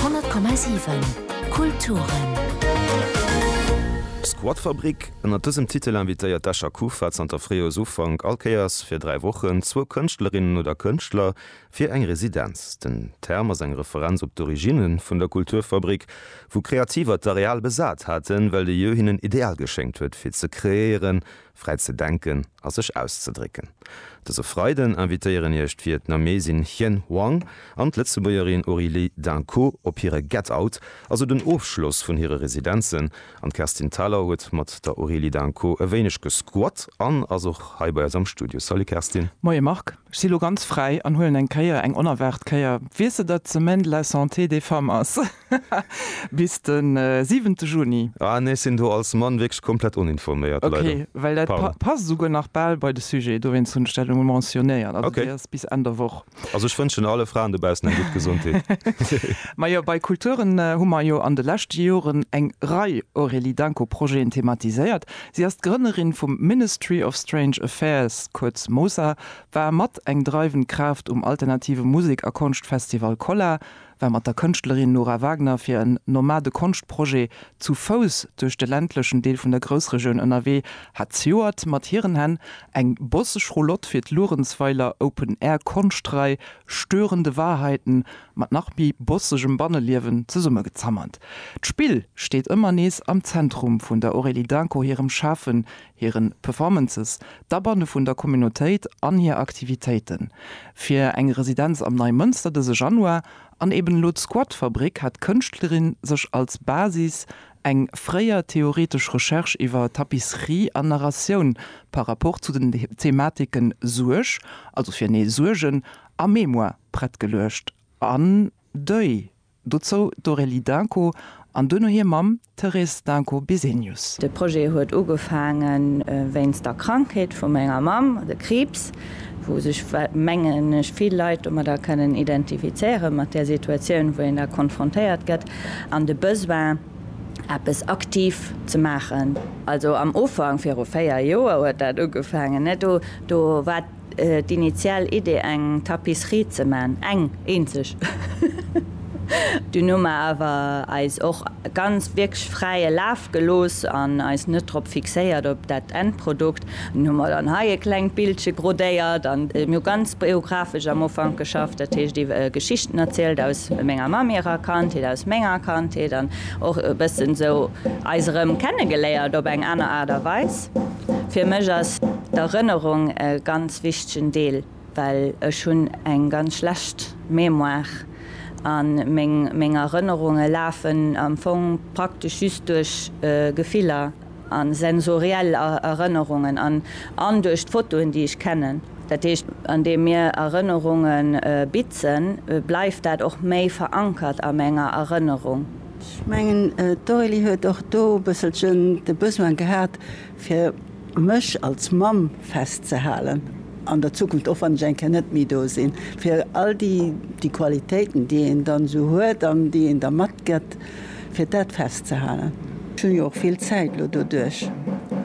100,7 Kulturen. D'Squatfabrik, ënnert dësem Titel invitéiert d'Escher Kufa zanter Fréijoersufank all Kéiers fir dräi Wochen zwou Kënschtlerinnen oder Kënschtler fir eng Residenz. Den Term ass eng Referenz op d'Originne vun der Kulturfabrik, wou Kreativer d'Areal besat haten, well de Jeu hinnen Ideal geschéngt huet fir ze kreéieren Fräi ze denken a sech auszedrécken. Dëse Freiden invitéieren iech d'Vietnamesin Hien Hoang an d'Lëtzebuergerin Aurélie D'Inco op hire Get Out, also den Ofschloss vun hire Residenzen. An d'Kerstin Thalau huet mat der Aurélie D'Inco e wéineg gesquat an ass och hei bei eis am Studio. Salut Kerstin. Moie Marc, ech si lo ganz fräi an huelen eng Kéier, eng onerwaart Kéier, wier se datt d'Semaine de la Santé des Femmes ass. Haha, bis den siwente Juni. Ah nee, ech sinn do als Mann wierklech komplett oninforméiert, leider. Ok, well dat passt esouguer nach bal bei de Sujet, dowéinst hunn ech dat emol mentionnéiert. Also déi ass bis Enn der Woch. Also ech wënschen alle Fraen dobaussen eng gutt Gesondheet. Majo, bei Kulturen hu mer jo an de leschte Joren eng Rei Aurélie Danko Projeten thematiséiert. Si ass d'Grënnerin vum Ministry of Strange Affairs, kuerz MOSA, war mat eng dreiwend Kraaft um alternative Musek a Konschtfestival Kolla, war mat der Kënschtlerin Nora Wagner fir en Nomade-Konscht-Projet zu Fouss duerch de ländlechen Deel vun der Groussregioun ënnerwee, hat zejoert mat hiren Hänn eng bosseg Roulotte fir d'Luerenzweiler Open Air Konscht-Rei Störende Wahrheiten mat nach méi bossegem Banneliewen zesummegezammert. D'Spill steet ëmmer nees am Zentrum vun der Aurélie Daincourt hirem Schafen, hiren Performances, d'Abanne vun der Communautéit an hir Aktivitéiten, fir eng Residenz am Neimënster dëse Januar an eben elo d'Squatfabrik, hat d'Kënschtlerin sech als Basis eng fréier theoretesch Recherche iwwer Tapisserie an Narratioun par rapport zu den Thematiken Suerg, also fir nee, Suergen a Mémoire prett geluecht an Deuil. Dozou d'Aurélie Dunco an duerno hir Mamm Thérèse Dunco Bisenius. De Projet huet ugefaange wéinst der Krankheet vu menger Mamm, de Kriibs, wou sech, mengen ech, vill Leit domadder kënnen identifizéieren, mat där Situatioun, wou een da konfrontéiert gëtt, an de Besoin, eppes aktiv ze maachen. Also am Ufank, viru véier Joer huet dat ugefaangen. Do war. D'initial Idee eng Tapisserie ze man, eng eenzeg, dun hu mer awer eis och ganz wierklech fräie Laf gelooss an eis net drop fixéiert op dat Endprodukt. Dun hu mer dann hei e klengt Bildche grodéiert an mir hu ganz biographesch am Ufank geschafft, dat heescht iwwe Geschichten erzielt aus menger Mamm hirer Kandheet, aus menger Kandheet an och e bëssen sou eis erëm kennegeléiert op eng aner Aart a Weis. Fir mech ass d'Erënnerung e ganz wichtegen Deel, well ech hunn eng ganz schlecht Mémoire a meng Erënnerunge lafen am Fong praktesch just duerch Gefiller a sensoriell Erënnerungen an duerch d'Fotoen, déi ech kennen. Dat heescht, andeem mir Erënnerunge bitzen, bleift dat och méi verankert a menger Erënnerung. Ech mengen, d'Aurélie huet och do e bësselchen de Besoin gehat, fir mech als Mamm festzehalen an der Zukunft, och wann ech eng Kéier net méi do sinn, fir all déi, déi Qualitéiten, déi een dann esou huet an déi een da matgëtt, fir dat festzehalen. Ech hu jo och vill Zäit elo doduerch,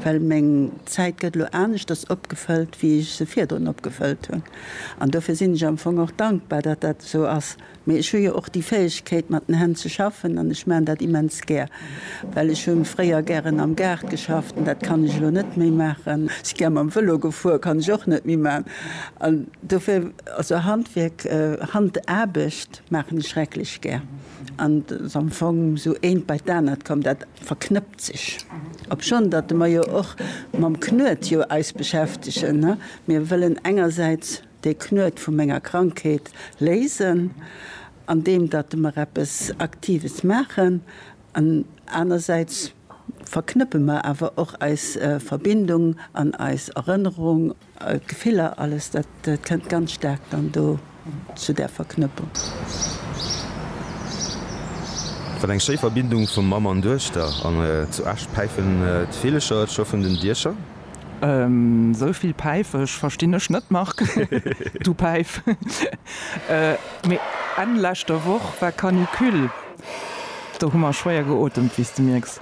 well meng Zäit gëtt elo aneschters opgefëllt, wéi ech se virdrun opgefëllt hunn. An dofir sinn ech am Fong och dankbar, datt dat esou ass, Mee ech hu jo och déi Fäegkeet mat den Hänn ze schaffen an ech maan dat immens gär, well ech hunn fréier gären am Gaart geschafft an dat kann ech elo net méi maachen. Si gär mam Vëlo gefuer, kann ech och net méi maan an dofir, also Handwierk, Handaarbecht maachen ech schrecklech gär an et ass am Fong sou eent bei d'anert komm, dat verknëppt sech. Obschonn datt mer jo och mam Knuet jo eis beschäftegen, ne, mir wëllen engersäits Dee Knuet vu menger Krankheet léisen, an deem datt mer eppes Aktives maachen, an anersäits verknëppe mer awer och eis Verbindung an eis Erënnerung, Gefiller, alles dat kënnt ganz staark dann do zu där Verknëppung. Wat eng schéi Verbindung vu Mamm an Duechter! An zu Esch päifen d'Villecher et scho vun den Diecher. Esou vill Päifesch verstinn ech net, Marc, du Päif. Mee Enn leschter Woch war Canicule, do hu mer schwéier geotemt, wéi s de mierks.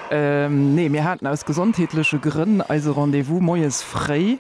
Nee, mir haten aus gesondheetleche Grënn eise Rendez-vous moies fréi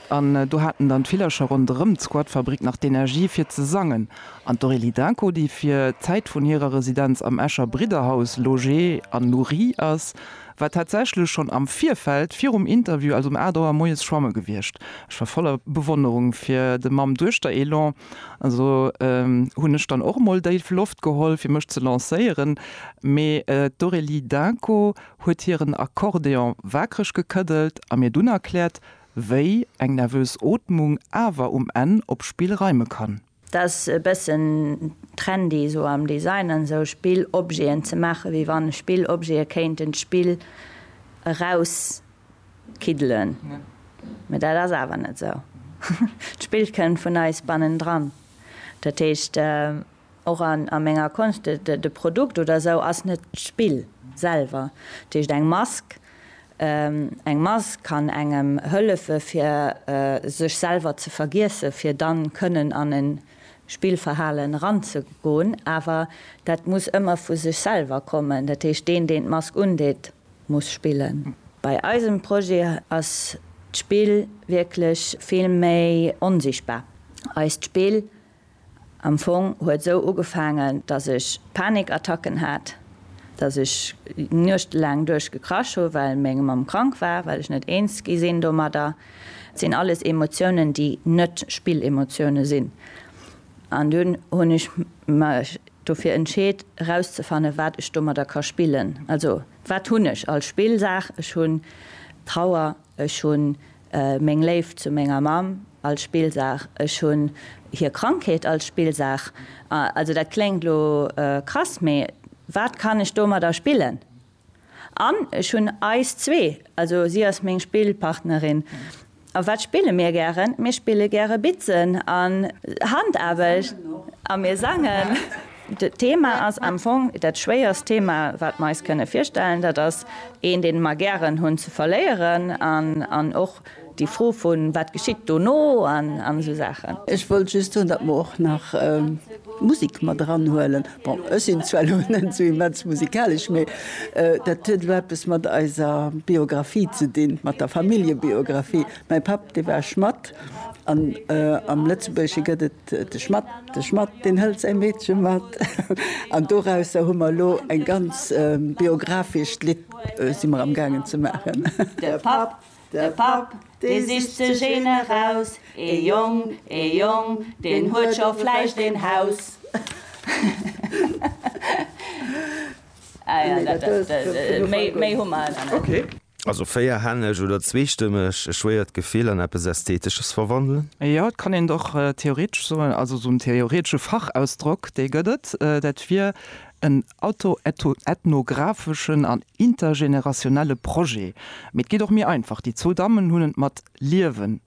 an do haten dann d'Villercher ronderëm d'Squatfabrik nach d'Energie fir ze sangen. An d'Aurélie Dainco, déi fir d'Zäit vun hirer Residenz am Escher Bridderhaus logée an nourrie ass, war tatsächlech schonn am Virfeld virum Interview, also um 8 Auer moies schwamme gewiescht. Ech war voller Bewonnerung fir de Mamm-Duechter-Elan, also hunn ech dann och mol déif Loft geholl fir mech ze lancéieren, mee d'Aurélie Dainko huet hiren Accordéon waakreg gekëddelt a mir dunn erkläert, wéi eng nervös Ootmung awer um Enn op Spill reime kann. T'ass e bëssen trendy esou am Design an esou Spillobjeten ze maachen, wéi wann Spillobjete kéinten d'Spill erauskiddelen. Mee dat ass awer net esou. D'Spill kënnt vun eis bannendran. Dat heescht, och a menger Konscht, de Produkt oder esou ass net d'Spill selwer. Dat heescht, eng Mask Eng Mass kann engem hëllefe fir sech selwer ze vergiessen, fir dann kënnen an en Spillverhalen eranzegoen, awer dat muss ëmmer vu sech selwer kommen, dat heescht deen deen d'Mask undeet muss spillen. Bei eisem Projet ass d'Spill wierklech vill méi onsichtbar. Eist Spill Am Fong huet esou ugefaangen, dass ech Panikattacken hat, dass ech nuechtelaang duerch gekrasch hu well meng Mamm krank war, well ech net eens gi sinn domadder. Et sinn alles Emotiounen, déi net Spillemotiounen sinn. An dunn hunn ech mech dofir entscheet, erauszefannen, wat ech domadder ka spillen. Also, wat hunn ech als Spillsaach? Ech hunn Trauer, Ech hunn meng Léift zu menger Mamm als Spillsaach. Ech hunn hir Krankheet als Spillsaach. Also dat kléngt elo krass, mee wat kann ech domadder spillen? An ech hunn eis zwee, also si ass meng Spillpartnerin. A wat spille mir gären? Mir spille gäre Bitzen an Handaarbecht. A mir sangen. D'Thema ass am Fong dat schwéierst Thema, wat mer eis kënne virstellen. Dat ass een, dee mer gären hunn, ze verléieren. An och déi Fro vun, Wat geschitt dono? an esou Saachen. Ech wollt just soen, datt mer och nach Musek mat eranhuelen. Bon, ech sinn zwar elo net esou immens musikalesch, mee dat huet elo eppes mat eiser Biografie ze dinn, mat der Familljebiografie. Mäi Papp, dee war Schmatt an am Lëtzebuergesche gëtt et. De Schmatt, de Schmatt, deen hëlt säi Meedche mat. An dorausser hu mer elo eng ganz biografischt Lidd, si mer am gaangen ze maachen. De Papp, de Papp, dee sicht sech een eraus, ee Jong, ee Jong, deen huet scho vläicht een Haus. Also véierhänneg oder zweestëmmeg, e schwéiert Gefill an eppes Ästhetesches verwandelen? Jo, et kann een et och theoretesch soen, also esou en theoretesche Fachausdrock, dee gëtt et, dat wier en autoethnographeschen an intergenerationelle Projet. Mee et geet och méi einfach, déi zwou Dammen hunn et mat Liewen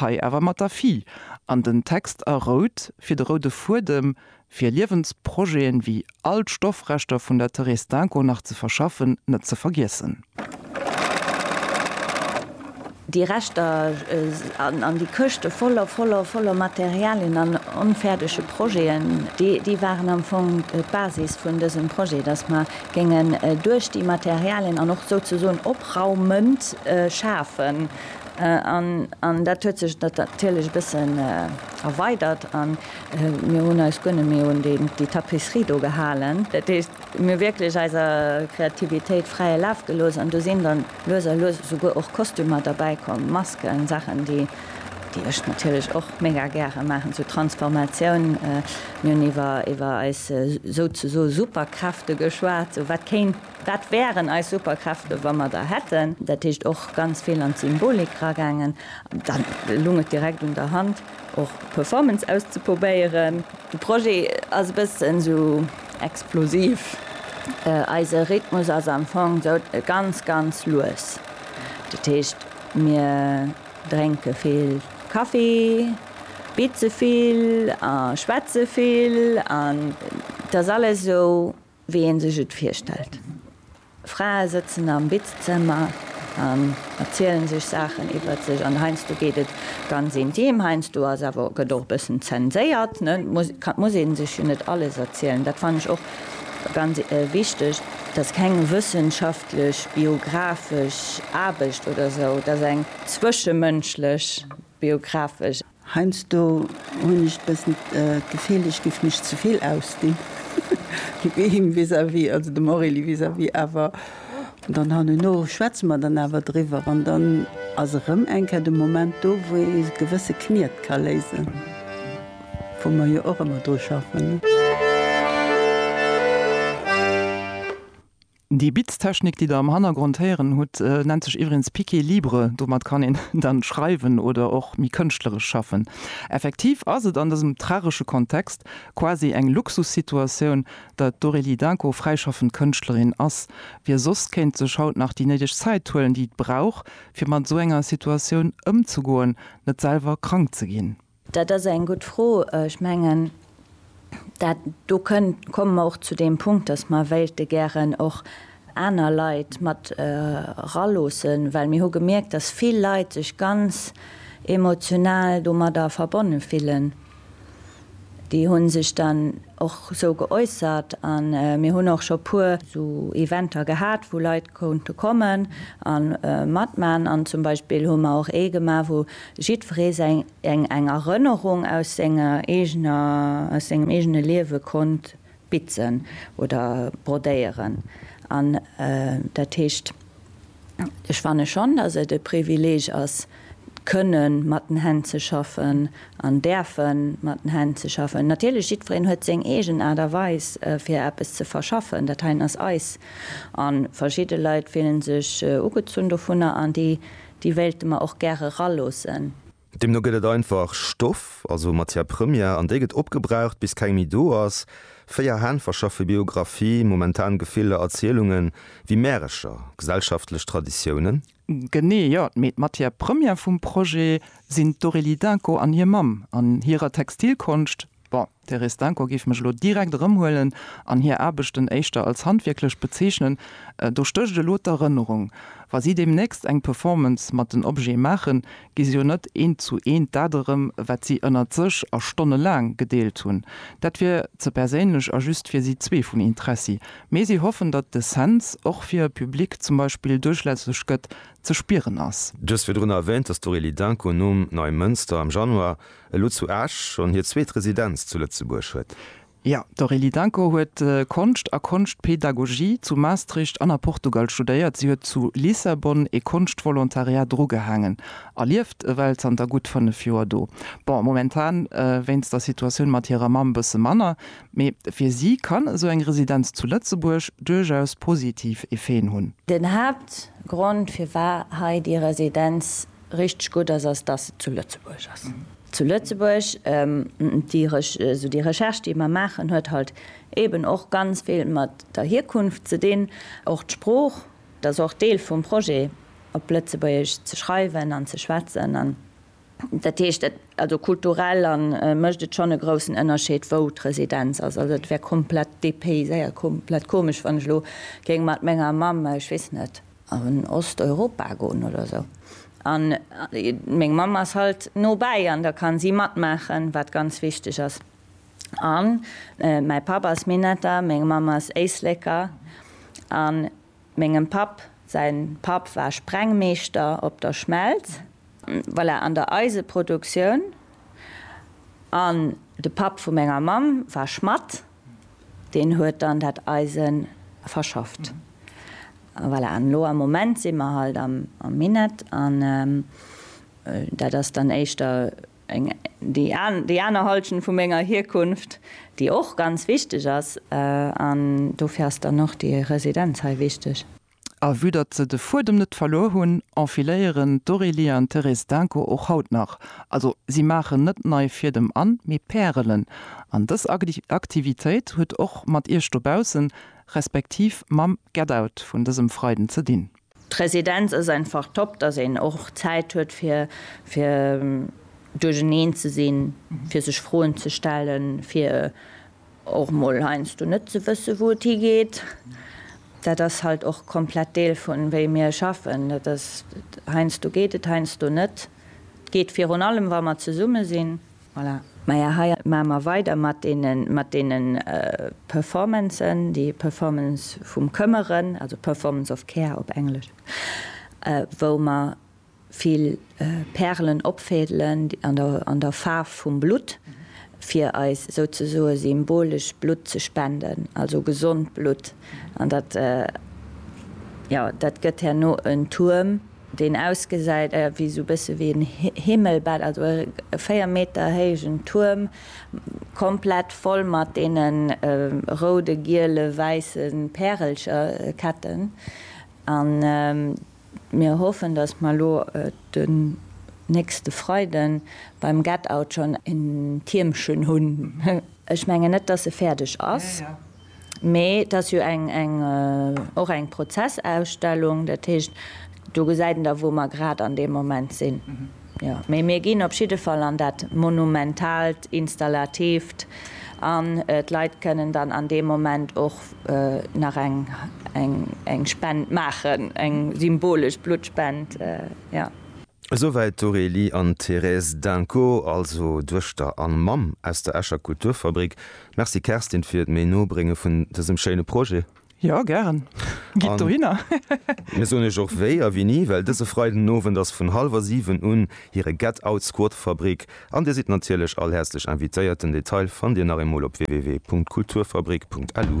hei awer mat der Fille, an den Text a rout fir de roude Fuedem, fir Liewensprojeten ewéi all d'Stoffreschter vun der Therese Denko nach ze verschaffen, net ze vergiessen. Déi Reschter an déi Këschte voller, voller, voller Materialien an onfäerdege Projeten, déi waren am Fong d'Basis vun dësem Projet, dass mer géingen duerch déi Materialien an och souzesoen op Raummënt schafen. An dat huet sech natierlech e bëssen erweidert a mir hunn eis guer net méi un déi Tapisserie do gehalen. Dat heescht, mir hu wierklech eiser Kreativitéit fräie Laf gelooss an do sinn dann lues a lues esouguer och Kostümer derbäi komm, Masken, Saachen, déi ech natierlech och mega gäre maachen, sou Transformatioun. Mir hunn iwwer eis souzesoe Superkräfte geschwat, sou wat kéint Wat wären eis Superkräfte, wa mer der hätten? Dat heescht och ganz vill an d'Symbolik eragaangen. Da lung et direkt un der Hand, och Performance auszepobéieren. De Projet ass e bëssen esou explosiv. Eise Rhythmus ass am Fong esou ganz, ganz lues. Dat heescht, mir drénke vill Kaffi, bize vill a schwätze vill. An et ass alles esou Wéi een sech et virstellt. Frae sëtzen am Bizzëmmer an erzielen sech Saachen iwwert sech an heiansdo geet et ganz intim, heiansdo ass awer, gëtt och e bëssen zenséiert, et muss ee sech jo net alles erzielen, dat fannen ech och ganz wichteg, et ass keng wëssenschaftlech biographesch Aarbecht oder sou, et ass eng zwëschemënschlech biographesch. Heinsdo hun ech bessen d'Gefill ech giff mech zevill ausdinn him vis à vis, also dem Aurélie vis à vis, awer dann hanno schwätze mer dann awer driwwer an dann ass erëm eng Kéier de Moment do wou ee gewësse Kniet ka léisen, wou mer jo och ëmmer dru schaffen. Déi Beatstechnik, déi der am Hannergrond héieren hutt, nennt sech iwwregens Piqué Libre. Domat kann een dann schreiwen oder och méi kënschtleresch schaffen. Effektiv ass et an dësem tragesche Kontext quasi eng Luxussituatioun, datt d'Aurélie Dainko fräischaffend Kënschtlerin ass. Wie soss kéint sech haut nach déi néideg Zäit huelen, déi et brauch, fir mat esou enger Situatioun ëmzegoen, net selwer krank ze ginn? Dat ass eng gutt Fro. Ech mengen, dat do kënnt, komme mer och zu deem Punkt, dass mer wéilte gären och aner Leit mat eraloossen, well mir hu gemierkt, dass vill Leit sech ganz emotional domadder verbonne fillen. Déi hu sech dann och esou geäussert a mir hunn och scho puer esou Eventer gehat, wou Leit konnte kommen a matman an zum Beispill hu mer och ee gemaach wou jiddweree seng eng eng Erënnerung aus senger eegener aus sengem eegene Liewe konnt bitzen oder brodéieren an dat heescht ech fanne schonn datt et e Privileeg ass, kënne mat den Hänn ze schaffen an däerfe mat den Hänn ze schaffen. Natierlech, jiddwereen huet seng eegen Aart a Weis fir eppes ze verschaffen. Dat heien ass eis. A verschidde Leit fillen sech ugezunn dovunner an déi wéilte mer och gäre raloossen. Deemno gëtt et einfach Stoff, also Matière première, an déi gëtt opgebraucht bis keng méi do ass. Véier Hänn verschaffe Biographie, momentan Gefiller, Erzielungen, wéi Märecher, gesellschaftlech Traditiounen. Genee, jo. Mee d'Matière première vum Projet sinn d'Aurélie Dinko an hir Mamm an hirer Textilkonscht. Bon, d'Thérèse Dinko géif mech elo direkt erëmhuelen an hir Aarbechten éischter als handwierklech bezeechnen. Do stécht elo d'Erënnerung. Wa si deemnächst eng Performance mat den Objete maachen, gi se jo net eent zu eent dat erëm, wat si ënnert sech a Stonne laang gedeelt hunn. Dat wier ze perséinlech a just fir si zwee vun Interessi. Mee si hoffen, datt de Cents och fir e Public zum Beispill duerchlässeg gëtt, ze spieren ass. Du hues virdrun erwäänt, datt d'Aurélie Danko nom Neumënster am Januar elo zu Esch schonn hir zweet Residenz zu Lëtzebuerg huet. Jo, d'Aurélie Dancos huet Konscht a Konschtpedagogie zu Maastricht an a Portugal studéiert. Si huet zu Lissabon ee Konscht-Volontariat drugehaangen a lieft ewell zanter gutt 5 Joer do. Bon, momentan wéinst der Situatioun mat hirer Mamm bësse manner, mee fir si kann esou eng Residenz zu Lëtzebuerg duerchaus positiv Effeten hunn. Den Haaptgrond firwat hei déi Residenz richteg gutt ass, ass dass se zu Lëtzebuerg ass. Zu Lëtzebuerg déi esou déi Recherche déi mer maachen huet halt eeben och ganz vill mat der Hierkunft ze dinn, och d'Sprooch, dass och Deel vum Projet op Lëtzebuergesch ze schreiwen an ze schwätzen an dat heescht et also kulturell an mécht et schonn e groussen Ënnerscheed wou d'Residenz ass. Also et wär komplett dépayséiert, komplett komesch wann ech elo géing mat menger Mamm, ech weess net, an Osteuropa goen oder sou an meng Mamm ass halt no bäi an da kann si matmaachen wat ganz wichteg ass an mäi Papp ass Minetter, meng Mamm ass Éisleker an mengem Papp säin Papp war Sprengmeeschter op der Schmelz voilà an der Eiseproduktioun an de Papp vu menger Mamm war Schmatt Deen huet dann dat Eise verschafft. Voilà, an elo am Moment si mer halt am Minett an dat ass dann éischter eng, déi aner Halschent vu menger Hierkunft, déi och ganz wichteg ass. An dofir ass dann och déi Residenz hei wichteg. A vue datt se de Fuedem net verluer hunn, enfiléieren d'Aurélie an d'Thérèse Denko och haut nach. Also si maachen net nei Fiedem an, mee Pärelen. An dës Aktivitéit huet och mat Iech dobaussen, respektiv mam Get Out vun dësem Freiden ze dinn. D'Residenz ass einfach top, datt een och Zäit huet fir fir duercherneen ze sinn, fir sech Froen ze stellen, fir. Och mol heiansdo net ze wësse wou et higeet, dat ass halt och komplett Deel vun wéi mir schaffen. Dat ass, heiansdo geet et, heiansdo net. Et geet virun allem wa mer zesumme sinn. Voilà. Maja hei maache mer weider mat deene mat deene Performancen, déi Performance vum Këmmeren, also Performance of Care op Englesch, wou mer Vill Pärelen opfädelen an der Faarf vum Blutt, fir eis souzesoe symbolesch Blutt ze spenden, also gesond Blutt. An dat, jo, dat gëtt herno en Tuerm, deen ausgesäit wéi esou e bësse wéi en Himmelbett, also e 4 Meter héijen Tuerm, komplett voll mat deene roude, giele, wäisse Pärelcherketten. Mir hoffen, dass mer elo den nächste Freiden beim Get Out schonn en Tiermchen hunn. Ech mengen net, dass e fäerdeg ass, mee et ass jo och eng Prozessausstellung. Dat heescht, do gesäit een da, wou mer grad an deem Moment sinn. Jo, mee mir ginn op jidde Fall an dat monumentaalt, installativt an d'Leit kënnen dann an deem Moment och nach eng Spend maachen, eng symbolesch Bluttspend. Jo. Esouwäit d'Aurélie an d'Thérèse Dinco, also Duechter an Mamm aus der Escher Kulturfabrik. Merci Kerstin fir d'Méi-No-Brénge vun dësem schéine Projet. Jo, gären. Gitt dohinner! Mir soen iech och wéi a wéini, well dëse Freiden Owend ass vun hallwer 7 un hire Get Out Squad Fabrik an dir sidd natierlech all häerzlech invitéiert. Den Detail fannt dir nach eemol op www.kulturfabrik.lu.